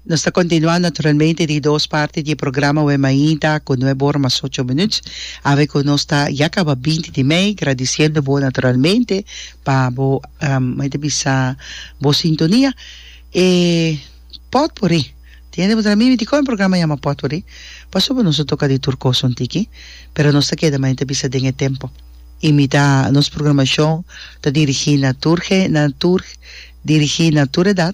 Nos ta continua naturalmente di dos parti di e programa Awe Mainta cu nuebe ora mas ocho minuut. Awe cu nos ta ya caba binti di mei gradiciendo bo naturalmente pa bo me ta bisa bo sintonia. E potpourri tin yende bo ta nami dicor e programa a yama potpourri pasobra nos a toca di tur cos un tiki pero nos ta keda manen ta bisa den e tempo y mi ta nos programacion ta dirigi na tur dirigi na tur edad.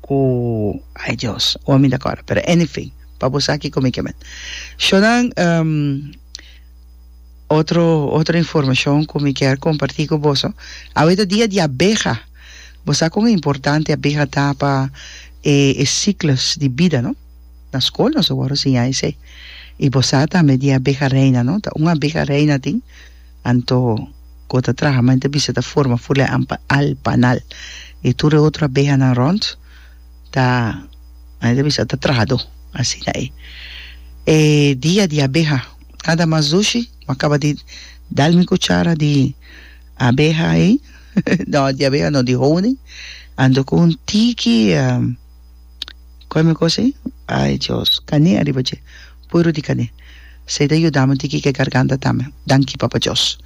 Ku ai Dios, oa mi ta kòrda. Pero anyfin, pa bo sa kiko mi ke met. Shonan, otro otro informashon ku mi kier kompartí ku boso. Awe ta dia di abeha. Bo sa kon importante abeha ta pa e e siklos di bida, no? Na skol nos a wòrdu siña esei. I bo sa tambe di e abeha reina, no? Ta un abeha reina tin. Anto Go ta traha ma en ta bisa ta forma ful'e ampa al panal i tur e otro abehanan rònt ta nan e ta bisa ta traha do asina e e dia di abeha nada mas dushi ma kaba di dal mi kuchara di abeha ei no di abeha no di honing anto ku un tiki. Kòe mi kos ei? Ai Dios, kané ariba dje, puru di kané. Esei ta yudami tiki ke garganta tambe. Danki Papa Dios.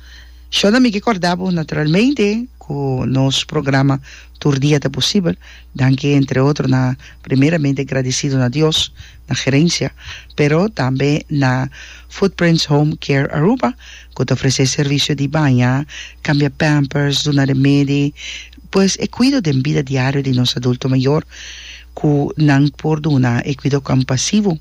Shonda mi ke kòrda bo, naturalmente, ku nos programa tur dia ta posibel danki entre otro na primeramente gradisido na Dios, na gerensia, pero tambe na Footprints Home Care Aruba ku ta ofresé servisio di baña, kambia pampers, duna remedi, Pues e cuido den bida diario di nos adulto mayor cu nan por duna e cuido compasivo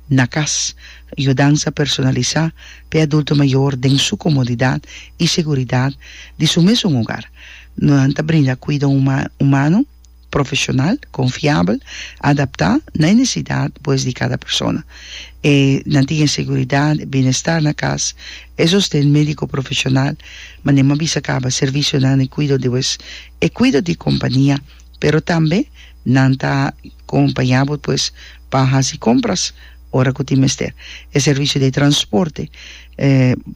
na cas, yudansa personalisa p'e adulto mayor den su comodidad y seguridad di su mesun hogar. Nan ta brinda cuido humano, profesional, confiabel, adapta na e necesidad pues di cada persona. E nan tin e seguridad, bienestar na cas E sosten medico profesional manera a bisa caba servicionan den cuido di wes e cuido di compania, pero tambe nan ta acompaña bo pues pa haci compras ora cu tin mester. E servicio di transporte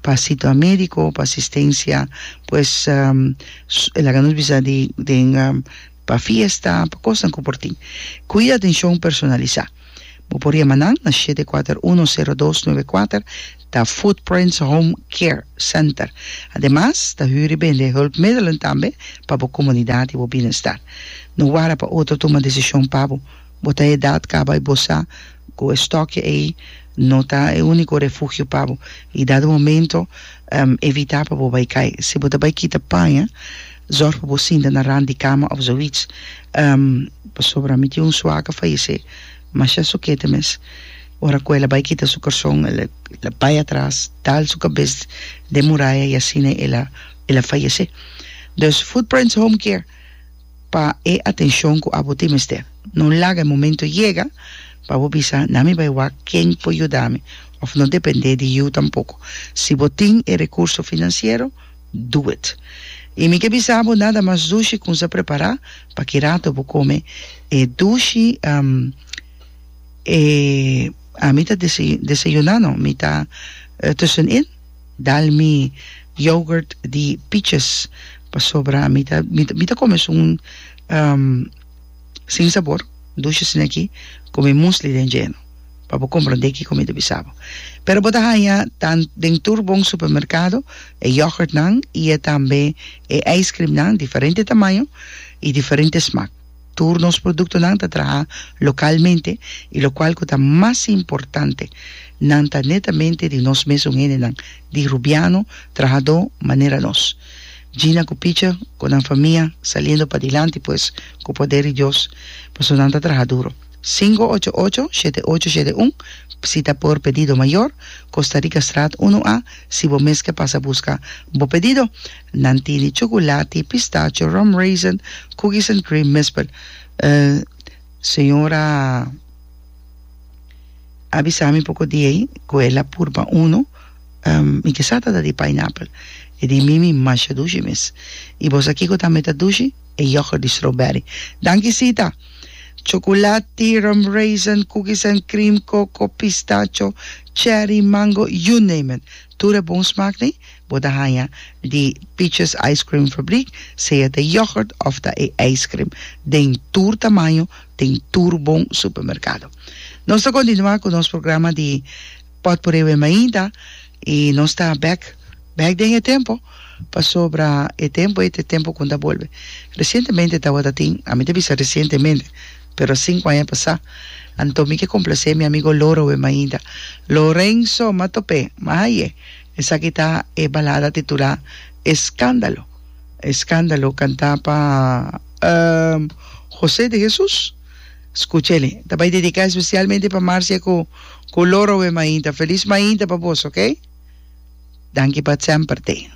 pa situa medico, pa asistencia, pues e laga nos bisa di den Pa fiesta, pa kosnan ku por tin. Kuida atenshon personalisá. Bo por yama nan na shete kuater uno sero dos nuebe kuater, ta Footprints Home Care Center. Ademas, ta hür i bende hulpmiddelen tambe pa bo komunidat i bo binnenstar. No wara pa otro tuma desishon pa bo. Bo ta edat kaba i bo sa ku e stòkje ei no ta e úniko refugio pa bo i dado momento evitá pa bo bai kai. Si bo ta bai kita paña, zòrg pa bo sinta na rand di kama òf zoiets, pasobra mi tin un sua ku fayesé masha sukete mes. Ora ku el a bai kita su korson el a bai atras, dal su kabes den muraya i asina el a fayesé. Dus Footprints Home Care. pa e atencion cu abo tin mester. No laga e momento yega pa bo bisa, Na mi bay wak ken por yuda mi, of no depende di yu tampoco. Si bo tin e recurso financiero, do it. Y mi ke bisa bo nada mas dushi cu nsa prepara pa ki rato bo come e dushi, um, e, ami ta desayuna no, mi ta tussenin. Dal mi yoghurt di piches pasobra mi ta mi ta come esun sin sabor dushe sino aki con mi musli den djeno pa bo comprende kico mi ta bisa bo pero bo ta haya tan den tur bon supermercado e yoghurt nan y e tambe e ice cream nan diferente tamaño y diferente smaak. Tur nos produktonan ta traha lokalmente i lokual ku ta mas importante, nan ta netamente di nos mesun hendenan di Rubiano, trahadó manera nos. Gina ku Picha ku nan famia saliendo padilanti pues ku poder di Dios, pasobra nan ta traha duro. Singo ocho ocho, shete ocho shete un, Bsita por Pedido Mayor, Costa Rica Straat uno A, si bo mes ke pasa buska bo pedido. Nan tene chocolate, pistacho, rum raisin, cookies and cream mespa. Señora a bisa mi poco di ey cu el a purba uno, mi ke sa ta ta di pineapple, e di mi mi masha dushi mes. Y bosa kiko tambe ta dushi? E yoghurt di strawberry. Danki Sita! Chocolate, rum raisin, cookies and cream, coco, pistacho, cherry, mango, you name it. Tur e bon smaak nee. Bo ta haña di Peaches Ice Cream Fabriek, sea ta yògùrt òf ta e eiskrim, den tur tamaño, den tur bon supermerkado. Nos ta kontinuá ku nos programa di Pòt Por Ewe Mainta i nos ta bèk bèk den e tempu pasobra e tempu ei ta e tempu ku un ta bolbe. Resientemente tabata tin, ami ta bisa resientemente, pero sinku aña pasá. Anto mi ke komplasé mi amigo Lorowe Mainta. Lorenzo, m'atop'é, m'haye. Esaki ta e balada titulá Escándalo. Escándalo cantá pa José de Jesús. Scucha el'e. Ta bay dedicá especialmente pa Marcia cu cu Loro e mainta. Feliz mainta pa boso, ok? Danki pa semper, T.